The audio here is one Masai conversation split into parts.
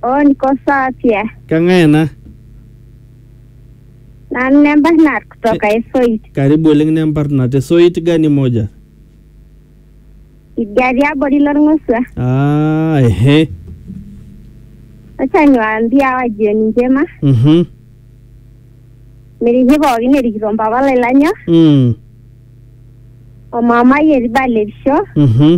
On ko Satia. Keng'ae ena? Nanu nembarnat kutoka Esoit. Karibu oleng nemparna te soit gani moja? Idia tiabori lorng'osua. Ah, ehe. Acha niwaambie hawa jioni njema. Mhm. Miriki pookin erikito mpapa lai lanyor Mm. o mamai etii balerisho. Mhm.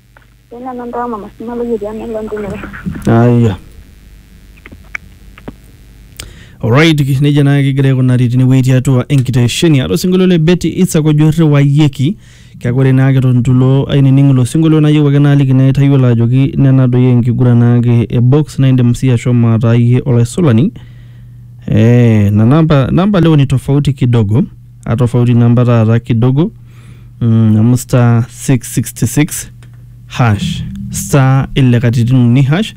Tena nando ama masima lo yeti ame lo ndulo. Aya. Alright, neja naa kigira aikunari tinewueji tiatua enkitesheni aata osinkolio le Betty Isaac ojo irriwayioki kake ore naa ake tontilo ainining ilo sinkolio nayieu ake naaliki naa itayiolo ajoki nena doi enkiguran naake e box naa indim sii ashomo ataa iyie olaisulani eh, na namba, namba leo ni tofauti kidogo atofauti namba taata kidogo mm, amu star 666 hash star ile katitin uni hash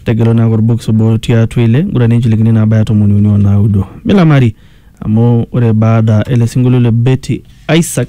tegelo naake orbox obo tiatua ile ngura ninchilikini naabaya tomoni uni onaudo milamari amu ore baada ele sinkolio le Betty Isaac